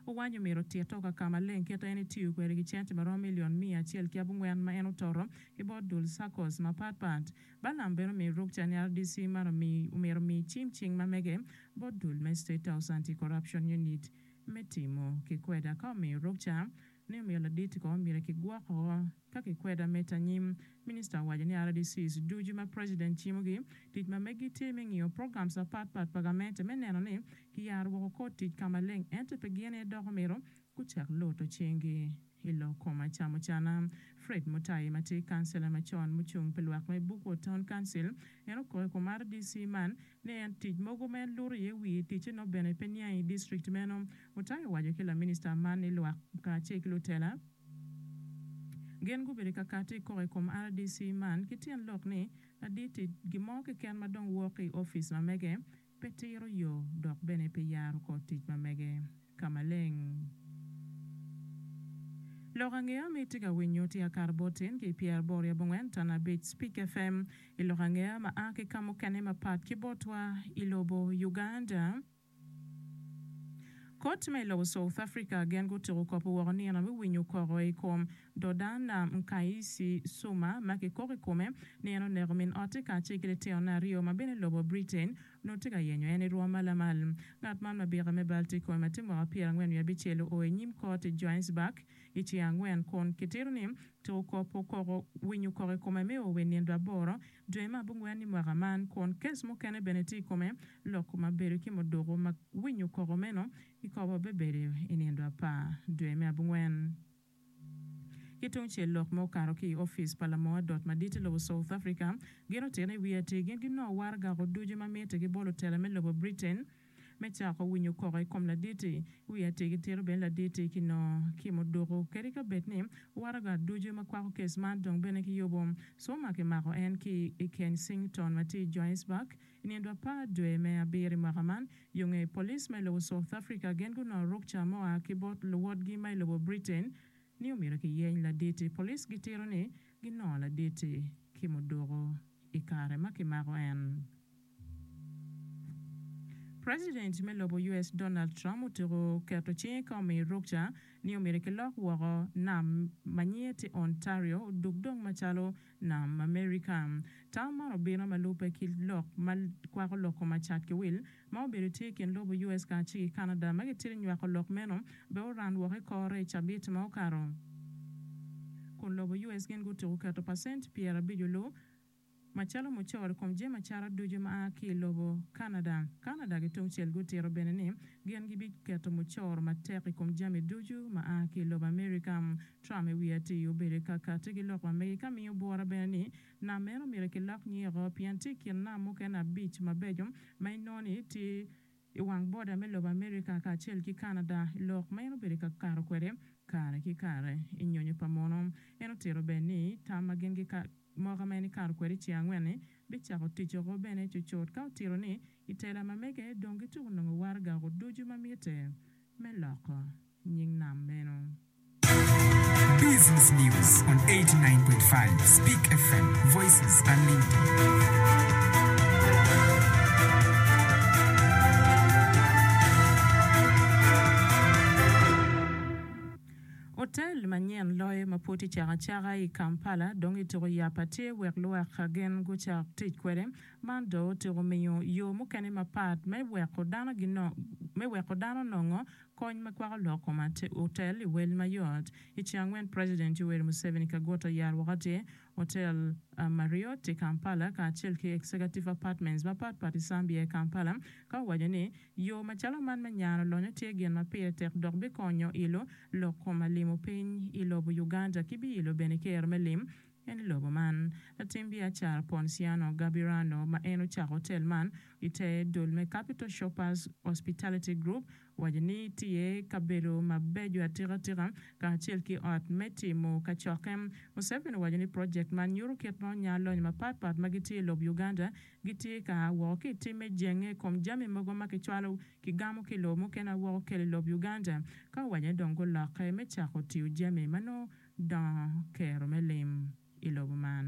Owanyo mito tito ka ka maleng kit en itiyo kwede ki cente maromo milion miya acel ki abongwen ma en ototo ki bot dul circles mapat pat. Balaam bene omiyo ruk ca ni rdc man omi omito omi cim cing ma mege bot dul me State House Anti-Corruption Unit me timo kikweda ka omiyo ruk ca Ne omiyo ladit kono myero kigwoko ka kikwedo ameta anyim. Minista owaco ni RDCs ducu ma president cimogi, tic ma megi tye me ngiyo programs apat pat pa gamente me neno ni kiyaro woko kor tic ka maleng ento pe gin aye dok omyero gucak luto cingi i lok kom acamucana. Fred Mutai ma tye kancela macon mucung pi lwak me Bookwood Town Council en okoyo kom RDC man ni en tic mogo ma en luto iye wiye ticce nongo bene pe niang i district meno. Mutai owaco ki laminista man ni lwak kacel ki lutela gin gubedo ka kati i koko i kom rdc man ki tyen lok ni ladit tic gin mo keken ma dong wok i office ma mege pe tiro yo dok bene pe yaro kor tic ma mege. Ka maleng. Lok ange ama itye ka winyo tye Akar Botin ki Pierre Bor ya bongwen Tan abic Speak FM I lok ange ama a ki kamukene mapat ki botwa I lobo Uganda. Kot ma I lobo South Africa gen gutuko kopo woko nino me winyo koko I kom Dodana Mkaisi Suma ma ki koko I kome nino oneko min ote kacel ki litino ne aryo ma bene lobo Britain Nongo tye ka yenyo en i rwom ma lamal. Ngat man ma bika me bal tye kome ma tye mwaka pyera angwen wiye abicel oo i nyim kot i Johannesburg i cinge angwen kun kitito ni tuko kop okoko winyo okoko i kome me oo we nindo aboro dwe me abongwen i mwaka man kun kes mukene bene tye i kome loko ma bedo ki muduku ma winyo okoko meno kikobo bebedo i nindo apar dwe me abongwen. Ki tung cel lok ma okato ki i opic pa lamoo adot madit i lobo South Africa gin otene i wi atir gin ginongo waro gako ducu ma mitte ki bolo tela me lobo Britain me cako winyo koko i kom laditi. I wi atir gitito bene laditi ki no ki muduku kadi ka bed ni waro ga ducu ma kwako kes man dong bene ki yubu suma ki mako en ki i Kensington ma tye i Johannesburg I nino apar dwe me abiri mwaka man, yo nge police ma i lobo South Africa gin gunongo rukca mua ki bot luwotgi ma i lobo Britain ni omyero kiyeny laditi. Police gitito ni ginongo laditi ki muduku i kare ma kimako en. President me lobo US Donald Trump otyeko keto cinge ka omiyo rukca ni omyero kilok woko nam ma nyinge tye Ontario odug dong macalo Nam Amerika. Tam man obino ma lubbe ki lok ma kwako lok koma cat ki wil ma obedo tye i kin lobo US kacel ki Canada ma gitito nywako lok meno bene oran woko i kore i cabit ma okato kun lobo US gin gutuku keto pacent pyerabico lu macalo mucoro i kom jami acata ducu ma a ki i lobo Canada. Canada ki tungcel gutito bene ni gin gibiketo mucoro matek i kom jami ducu ma a ki i lobo Amerika. Trump i wi atir obedo i kakati ki lok ma mege ka miyo bwora bene ni nam meno myero kilok nyinge oko pien tye i kin nam mukene abic mabeco ma inongo ni tye i wang boda me lobo America kacel ki Canada. Lok ma en obedo ka kato kwede kare ki kare i nyonyo pa muno, en otito bene ni tam ma gin gika moka ma en ikato kwede i cinge angwen-ni bicako tic oko bene cucut ka otito ni i tela ma mege dong gituko nongo waraga oko ducu ma mitte me loko. nying nam meno. Business News on 89.5 Speak FM, Voices Unlimited. Otel manyen loyo ma pud tye cek aceka i Kampala dong kituko yap ma tye wek lwak gin gucak tic kwede. Man dong otyeko miyo yo mukene mapat me weko dano nongo Kony ma kwako lok kom otel i wel mayot. I ceng angwen president Yoweri Museveni kagut oyaro woko tye otel Marriott i Kampala kacel ki executive apartments mapat pat i Zambia i Kampala ka owaco ni yo macalo man me nyano lonyo tye gin ma pire tek dok bikonyo ilo lok kom alimo piny i lobo Uganda ki bi ilo bene ker me lim En i lobo man. Latim biacara Ponciano Gabirano, ma en ocako otel man i te dul me Capital Shoppers Hospitality Group, owaco ni tye kabedo mabeco atikatika kacel ki ot me timo kacokke. Museveni owaco ni project man nyuto kit ma onya lonyo mapat pat ma gitye i lob Uganda gitye ka a woko ki i tim me jenge i kom jami mogo ma kicwalo kigamo ki i lobo mukene a woko kelo i lob Uganda ka owaco ni dong gulokke me cako tiyo jami ma nongo dongo kero me lim i lobo man.